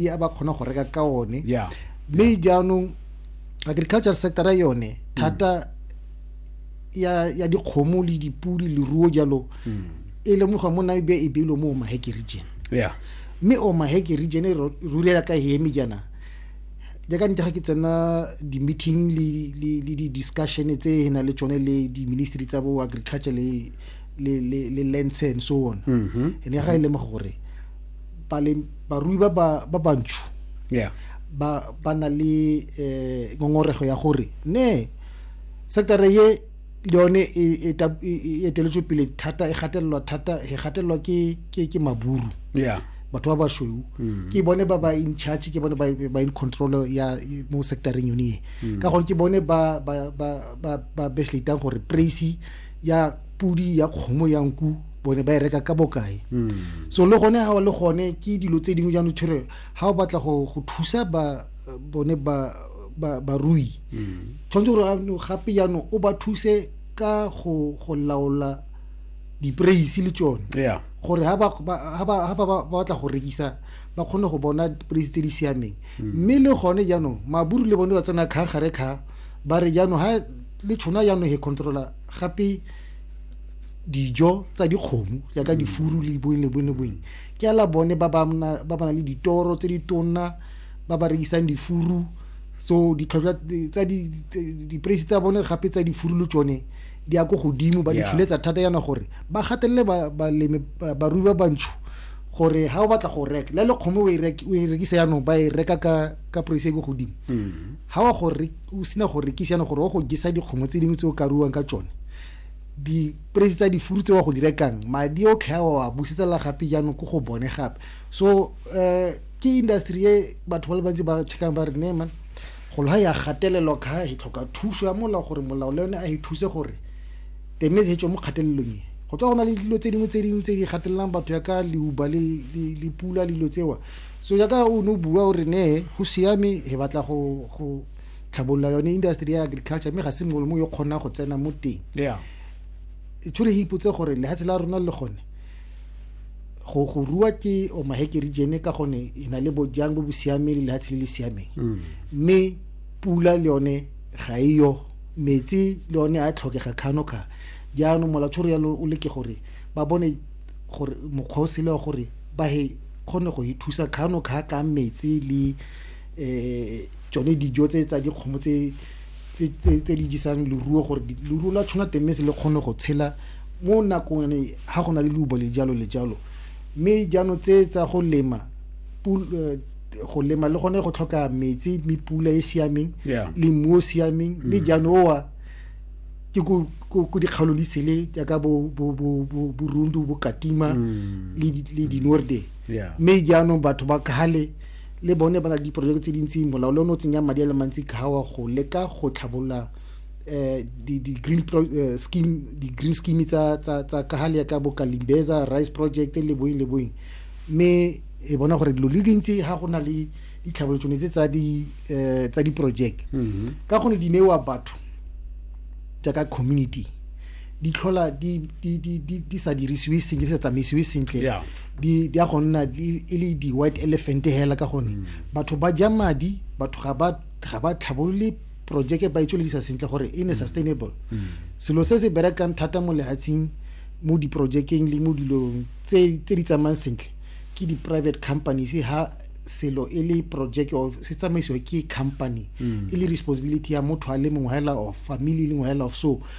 e a ba kgona go reka ka one yeah mme jaanong agriculture sectora yone thata ya ya dikgomo le dipudi leruo jalo e lemoga mo namibia e beilwe mo omaheke region yeah mme omaheke region e ro- rulela ka heme jaana jaaka nte ga ke tsena di-meeting le- le le di-discussion tse e na le tsone le di-ministry tsa bo agriculture le le- le le lands and so on ene ga e lemoga gore barui ba ba bantsho yeah ba ba na le eh ngongorego ya gore ne sector ye le yone e, e, e, e eteletswe pele thata e gatelelwa thata e gatelelwa ke ke ke maburu yeah batho ba basweu mm. ke bone ba ba in charge ke bone ba in control ya mo sectoreng yone e mm. ka gore ke bone ba ba ba ba ba besletang gore price ya pudi ya kgomo ya nku bone ba e reka ka bokae hmm. so le gone ga le gone ke dilo tse dingwe jaanong tshwere ga o batla go thusa ba bone ba barui hmm. tshwanetse gore gape jaanong o ba thuse ka go laola dipreisi le tsone gore ga ba batla go rekisa ba kgone go bona dipreisi tse di siameng hmm. mme le gone jaanong maburu le bone ba tsena kga gare kga ba re jaanong ga le tshona jaanong he controla gape dijo tsa dikgomo jaaka mm. difuru le boeng le boeng le boeng ke ala bone ba ba na le ditoro tse di tonna ba ba rekisang difuru so ditlhotlhwa tsa dipreisi tsa bone gape tsa difuru le tsone di ya ko godimo ba di tsholetsa thata yana gore ba gatelele balemi barui ba bantsho gore ha o batla go reka la le kgomo o e, e rekisa yanong ba e reka ka ka price e ko godimo mm. ha wa gore o sina go rekisa yana gore o go gisa dikgomo tse dingwe tse o ka ruwang ka tsone dipresi tsa difuru tse wa go di rekang madi otlhe a wa busetsa gape jaanong ko go bone gape so um ke industry e batho ba le bantsi ba checkang ba re nema golo ga ya gatelelwa ka e tlhoka thuso ya molao gore molao le yone a e thuse gore teme se tswe mo kgatelelong e go tswa go na le dilo tse dingwe tse dingwe tse di gatelelang batho yaka leuba le pula le dilo tsewa so yaka o ne o bua o re ne go siame e batla go tlhabolola yone industry ya agriculture mme ga se mongwe le mongwe yo kgonang go tsena mo teng yeah tshwere e ipotse gore lehatshe la rona le gone go go rua ke o maheke region ka gone e na le bojang bo bo siameng le lehatshe le le siameng mme pula le yone ga e yo metsi le yone a tlhokega kgano kga jaanong molatshoro yalo o leke gore ba bone gore mokgwa o sele wa gore ba he kgone go ithusa kgano kga ka metsi le tsone dijo tse tsa dikgomo tse tse di jesang leruo gore leruo la tshwana teng se le kgone go tshela mo nakong ga go na le leubo le jalo le jalo mme jaanong tse tsa go lema go lema le gone go tlhoka metsi mme pula e siameng le mmu o siameng mme jaanong owa ke ko dikgaolo di sele jaaka borundu bo katima le dinorde mme jaanong batho ba kgale le bone ba na le diporojeke tse dintsi molao le o ne o tsenya madi a le mantsi kgawa go leka go tlhabolola um di-green eh, scheme di-green scheme tsa tsa tsa ka gale ka boka limbeza rice project le boeng le boeng mme e bona gore dilo le dintsi ga go na le ditlhabolotšone tse tsa di eh, tsa diporojeke mm-hmm. ka gone di newa batho jaaka community di tlhola di sa dirisiwe sentle di sa tsamaisiwe sentle di di a go nna e le di white elephant hela ka gone mm. batho ba ja madi batho ga ba ga ba tlhabolole projeke ba itsweledisa sentle gore e ne mm. sustainable mm. selo se se berekang thata mo lehatsheng mo diprojekeng le mo dilong tse di tsamayang sentle ke di-private companies ha selo e le project or se tsamaisiwa ke company e le responsibility ya motho a le mongwe hela of family e le mongwe hela of so